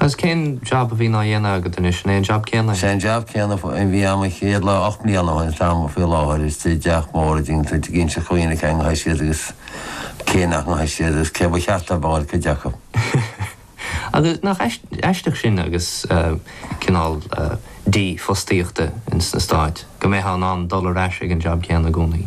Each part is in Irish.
Agus cén jab a bhíonn á dhéanamh agat anois? An é an jab céanna é? Sé an jab céanna a bhí a'm an chéad lá, ocht mbliana ó shin atá a'm faoi láthair, istigh i dteach mór a dtuigeann tú ag inseacht do dhaoine cá ngabhfaidh siad agus cá nach ngabhfaidh siad agus cá ba cheart dóibh a dhul ag cuid acu. Agus nach aisteach sin agus cineál dífhostaíochta ins na Stáit, go mbeifeá in ann dul ar ais ag an jab céanna i gcónaí?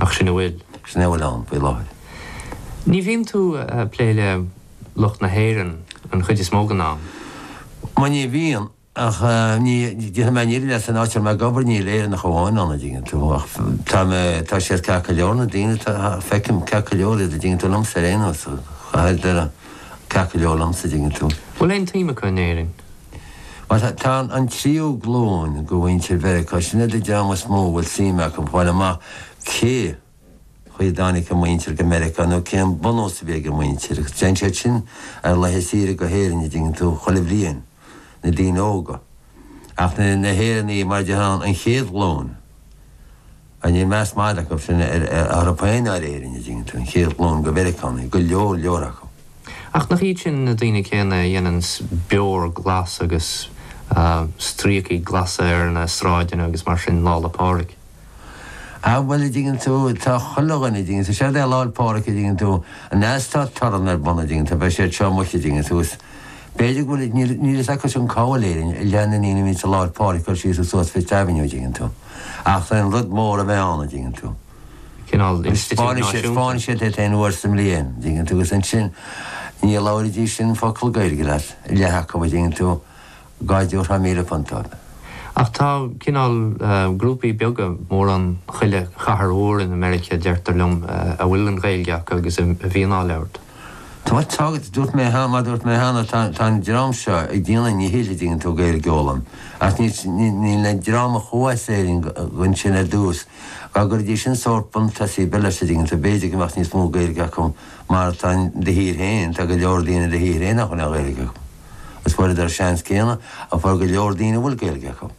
Ach sin a bhfuil. Sin é a bhfuil ann faoi láthair. Ní bhíonn tú ag plé le lucht na hÉireann an chuid is mó den am? Bhuel, ní bhíonn. Ach déarfaidh mé níl san áit a bhfuil mé ag obair, níl Éireannach amháin ann, a dtuigeann tú. Ach tá mé, tá siad ceart go leor, na daoine atá, feicim ceart go leor iad, a dtuigeann tú, liomsa ar aon nós, chaitheadar ceart go leor liomsa, a dtuigeann tú. Bhfuil aon tsuim acu in Éirinn? Tá an tríú glúin de mhuintir Mheiriceá, sin iad an dream is mó a bhfuil suim acu a fáil amach cé chaoi a dtáinig a muintir go Meiriceá nó cén bunús a bhí ag a muintir, agus téann siad sin ar laetha saoire go hÉirinn a dtuigeann tú chuile bhliain, na daoine óga. Ach na hÉireannaigh, mar a déarfá, an chéad ghlúin. Níl meas madra acu sin ar Éirinn a dtuigeann tú, an chéad ghlúin de Mheiriceánaigh, go leor leor acu. Ach nach iad sin na daoine céanna a dhéananns beoir glas agus stríocaí glasa ar na sráideanna agus mar sin Lá 'le Pádraig? Á bhuel, a dtuigeann tú, tá chuile dhuine, a dtuigeann tú, séard é Lá 'le Pádraig, a dtuigeann tú, an ea is tá torann ar bun, a dtuigeann tú, beidh siad seo amuigh, a dtuigeann tú, is b'fhéidir go bhfuil, níl, níl a fhios acu sin cá bhfuil Éirinn, leath na ndaoine a bhíonns i Lá 'le Pádraig síos is suas Fifth Avenue, a dtuigeann tú. Ach tá an-rud mór a bheith ann, a dtuigeann tú. Cineál institiúid náisiúnta. Tá sé aon uair sa mbliain, a dtuigeann tú, agus ansin ní labhróidís sin focal Gaeilge leat, leath acu, a dtuigeann tú, dhá dtabharfá míle punt dóibh. Ach tá cineál grúpaí beaga, mórán chuile chathair mhór i Meiriceá, deirtear liom, a bhfuil an Ghaeilge acu agus a bhíonn á labhairt. Tá sé tagtha, dúirt mé cheana, mar dúirt mé cheana, tá, tá an dream seo ag déanamh, a ndíchill, dtuigeann tú, Gaeilge a fhoghlaim. Ach níl, níl, níl an dream a chuaigh as Éirinn ansin ar dtús, dá gcuirfidís sin sórt buntús beag leis, dtuigeann tú, b'fhéidir go mbeadh níos mó Gaeilge acu mar atá in do thír féin, tá go leor daoine in do thír féin nach bhfuil aon Ghaeilge acu. Is fuaireadar seans céanna a fuair go leor daoine a bhfuil Gaeilge acu.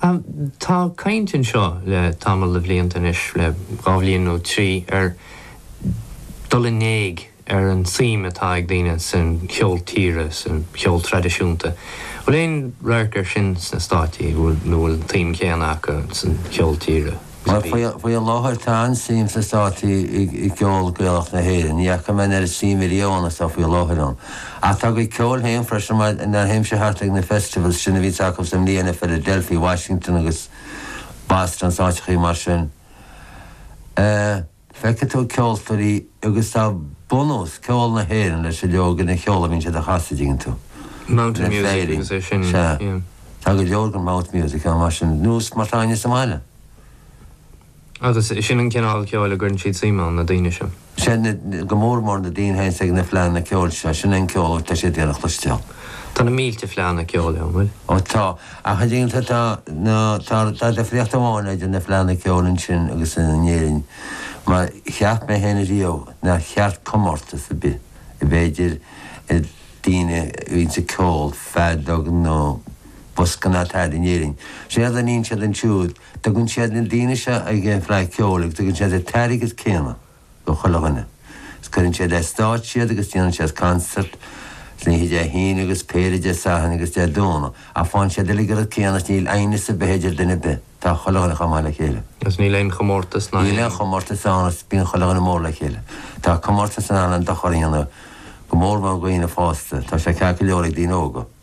Tá caint anseo le tamall de bhlianta anois, le dhá bhliain nó trí, ar dhul in éag ar an tsuim atá ag daoine san cheol tíre, san cheol traidisiúnta. Bhfuil aon radharc air sin sna Stáit, nó an bhfuil an tsuim chéanna acu san cheol tíre? Faoi láthair tá an-suim sna Státaí i gceol Gaelach na hÉireann. Ní fhaca mé an oiread suime riamh is atá faoi láthair ann. Ach tá a gcuid ceoil féin freisin má théann sé thart ag na festivals sin a bhíonns acu sa mbliain i Philadelphia, Washington agus Boston, is áiteachaí mar sin. Feicfidh tú ceoltóirí agus tá bunús cheol na hÉireann leis an, le go leor den cheol a bhíonn siad a chasadh, dtuigeann tú. Mountainy music freisin agus é sin, Sea. yeah. Tá go leor den mountain music ann mar sin, nós mar atá againne sa mbaile. Agus sin an cineál ceoil a gcuireann siad suim ann, na daoine sin. Sea, na, go mór mór na daoine féin is ag na fleánna ceoil seo, sin é an ceol a bhfuil siad ag iarraidh a chloisteáil. Tá na mílte fleánna ceoil ann, bhfuil? Ó tá. Ach an dtuigeann tú, tá, tá, tá difríocht amháin idir na fleánna ceoil ansin agus in Éirinn, mar cheap mé féin riamh nár cheart comórtas ar bith a bheith idir daoine a bhíonns ag ceol, feadóg nó bosca mar atá in Éirinn. Séard a níonn siad ansiúd, tugann siad na daoine seo chuig an bhFleadh Cheoil agus tugann siad an t-airgead céanna. do chuile dhuine. Is cuireann siad ar stáitse iad agus déanann siad concert, san oíche Dé hAoine agus péire Dé Sathairn agus Dé Domhnaigh, ach faigheann siad uilig an rud céanna is níl aighneas ar bith idir duine ar bith, tá chuile dhuine chomh maith le chéile. Is níl aon chomórtas ná aon. Níl aon chomórtas ann is bíonn chuile dhuine mór le chéile. Tá comórtas in ann an-dochar a dhéanamh, go mórmhór do dhaoine fásta, tá sé ceart go leor ag daoine óga.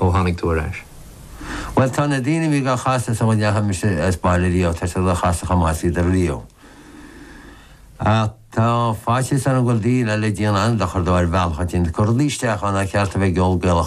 ó tháinig tú ar ais? Bhuel, tá na daoine a bhí dhá chasadh sula ndeachaigh mise as baile riamh, tá siad dhá chasadh chomh maith is a bhíodar riamh. Ach tá faitíos orm go bhfuil daoine eile ag déanamh an-dochar dó ar bhealach éigin. Cur rudaí isteach ann nár cheart a bheith i gceol Gaelach.